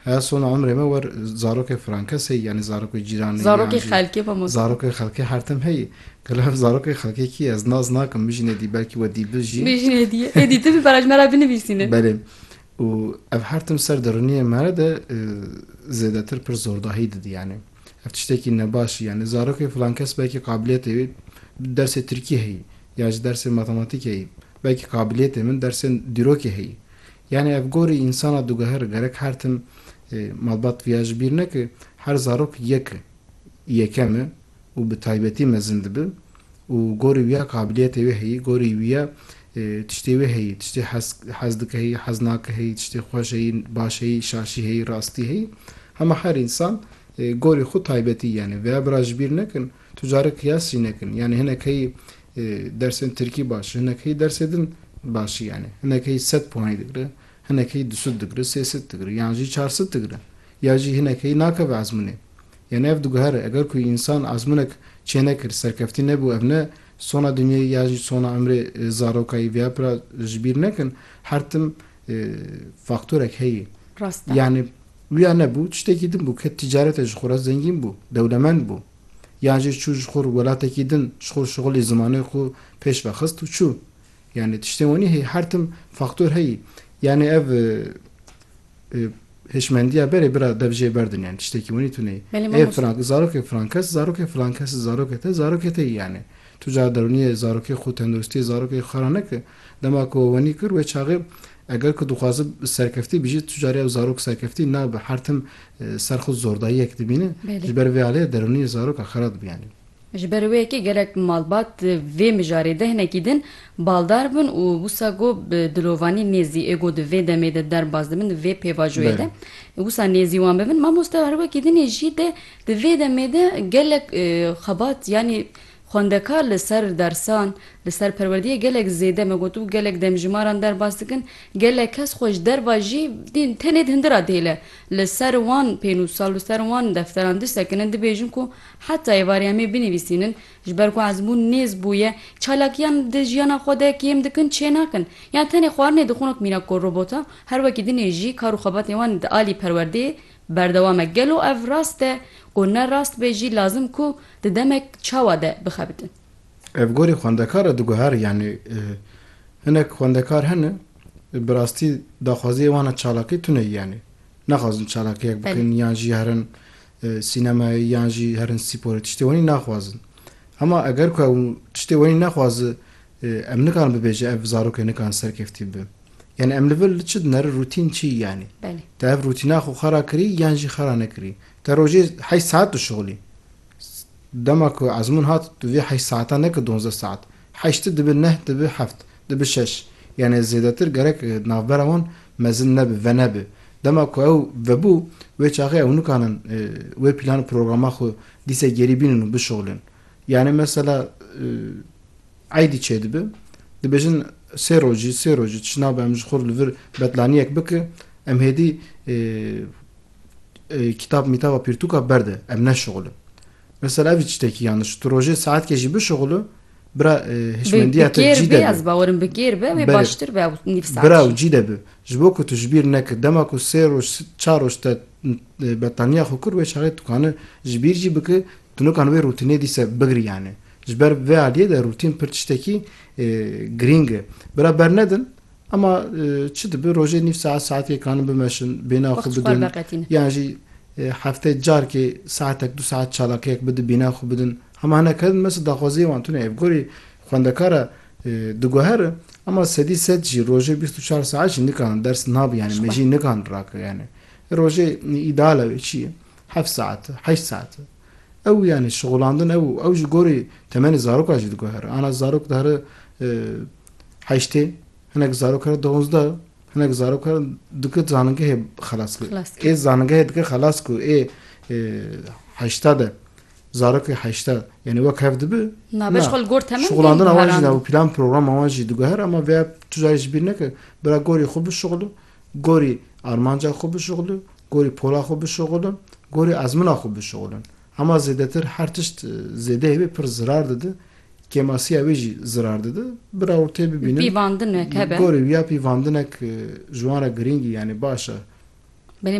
Heya sona umrê me wer zarokê frankes heyî yanî zarokê cîranê yan Zarokê jî xelkê xwe mos. zarokê xelkê hertim heyî. Gelo ev zarokê xelkê kî ye? Ez nas nakim mijînê dî belkî we dîbil jî. Mijînê dî ye. Êdî tu bi beraj me re binivîsîne. Belê. Û ev hertim ser derûniyê me re de zêdetir pir zordahî didî yanî. Ev tiştekî nebaş î yanî zarokê filankes belkî qabiliyetê wî dersê tirkî heyî yan jî dersê matematîk heyî belkî qabiliyetê min dersê dîrokê heyî. Yanî ev gorî însana dugeher gerek her tim malbat viya ji bîr neke, her zarok yek e, yekem e û bi taybetî mezin dibe û gorî wiya qabiliyetê wê heyî, gorî wiya tiştê wê heyî, tiştê hez dike heyî, hez nake heyî, tiştê xweş heyî, baş heyî, şaşî heyî, rastî heyî. Hema her însan gorî xwe taybetî yanî viya bira ji bîr nekin, tu carek qiyas jî nekin. Yanî hinek heyî Dersên tirkî baş, hinek hî dersê din baş î yanî hinek hî sed puanî digre, hinek hî du sud digre, sê sud digre yan jî çar sud digre ya jî hinek hî nakeve ezmûnê. Yanî ev diguhere eger ku însan ezmûnek çênekir, serkeftî nebû ev ne sona dinyayî ya jî sona imrê zaroka yî vêya pira ji bîr nekin her tim faktorek heyî. Rast e. Yanî wîya nebû tiştekî din bû ke tîcarete ji xwe re zengîn bû, dewlemend bû. Yan jî çû ji xwe welatekî din ji xwe şixulê zimanê xwe pêş ve xist û çû. Yanê tiştên wenî heye her tim faktor heyî. Yanê ev hişmendiya berê bira dev jê berdin yanê tiştekî wenî tune yî. Ê filan zarokê filan kes zarokê filan kes zarokê te zarokê te yî yanê. Tu cara derûniyê zarokê xwe tenduristiyê zarokê xwe xera neke. Dema ku we wenî kir wê çaxê eger ku dixwazib serkeftî bijî tu carê ew zarok serkeftî nabe her tim ser xwe zordayiyek dibîne ji ber vê aliyê derûniyê zaroka xera dibe yanî. Ji ber wê yekê gelek malbat vê mijarê de hinekî din baldar bûn û wisa ku bi dilovanî nêzî ê ku di vê demê de derbas dibin di vê pêvajoyê de wisa nêzî wan bibin mamoste her wekî din ê jî de di vê demê de gelek xebat yanî Xwendekar li ser dersan, li ser perwerdiyê gelek zêde me got û gelek demjîmaran derbas dikin, gelek kes xwe ji derva jî dîn tenê di hindira dêle li ser wan pênûsa û li ser wan defteran disekinin, dibêjin ku heta êvarê em ê binivîsînin, ji ber ku ezmûn nêz bûye, çalakiyan di jiyana xwe de kêm dikin, çênakin. Yan tenê xwarinê dixwin wek mînak ku robota, her wekî dinê jî kar û xebatên wan di alî perwerdeyê Berdewam e gelo ev rast e ku ne rast be jî lazim ku di demek çawa de bixebitin. Ev gorî xwendekar e diguhere yanî hinek xwendekar hene bi rastî daxwaziyê wan e çalakî tune yanî naxwazin çalakiyek bikin yan jî herin sînemayê yan jî herin spor tiştê wenî naxwazin hema eger ku ew tiştê wenî nexwazi Em nikarin bibêje ev zarokê nikarin serkeftî bibe. Yanî em li vir li çi dineri rûtîn çi yanî? Belê. Te ev rûtîna xwe xera kirî yan jî xera nekirî. Te rojê heşt saet dişixulî. Dema ku ezmûn hat tu vê heşt saetan neke donzdeh saet. Heşti dibe neh dibe heft. Dibe şeş. Yanî zêdetir gerek navbera wan mezin nebe, venebe. Dema ku ew vebû wê çaxê ew nikarin wê plân û programa xwe dîse gerî bînin û bişuxulin. Yanî mesela eydî çêdibe dibêjin sê rojî sê rojî çi nabe em ji xwe li vir betlaniyek bike em hêdî kîtab mîtaba pîrtûka berde em neşixulin. Mesela evî tiştekî yaniş tu rojê saetkê jî bişixulu bira hişmendiya te cî de ez bawerim bi kêr be wê baştir be nîv saet bira û cî de bi ji bo ku tu ji bîr neke dema ku sê roj çar roj te betlaniya xwe kir wê çaxê dikane ji bîr jî bike Tunukan wê rûtînê dîse bigiriyane. Ji ber vê aliyê de rûtîn pir tiştekî girîng e. Bira bernedin ema çi dibe rojê nîv saet saetekê kanin bimeşin, bêhna xwe bidin yan jî hefteyê carkê saetek du saet çalakiyek bidin bêhna xwe bidin. Hema hinek hedin me daxwaziyê wan tune ye. Bi gorî xwendekar e diguhere ema sedî sed jî rojê bîst û çar saet jî nikarin ders nabin yanî me jî nikarin rake yanî. Rojê îdeal e wê çi ye? Heft saet, heşt saet. Ew yanî şixulandin ew û ew ji gorî temenê zarokan jî diguhere. Ana zarok dihere heştê, hinek zarok here duwanzde, hinek zarok here dike zanîngehê xelas bike. Ê zanîngehê dike xelas ku ê heşta de zarokê heşta yanî wek hev dibi. Na beş xwe li gor temen şixulandina wan jî na û plan programa wan jî diguhere. Ema vêya tu carî ji bîr neke bira gorî xwe bişixulin. Gorî armanca xwe bişuxlu, gorî pola xwe bişuxlu, gorî ezmina xwe bişuxlu. Hema zêdetir her tişt zêdeyê wê pir zirar dide, kêmasiya wê jî zirar dide. Bi rawirtê bibînin. Pîvandinek hebe. Gorî ya pîvandinek ji wan re girîng î yanî baş e. Belê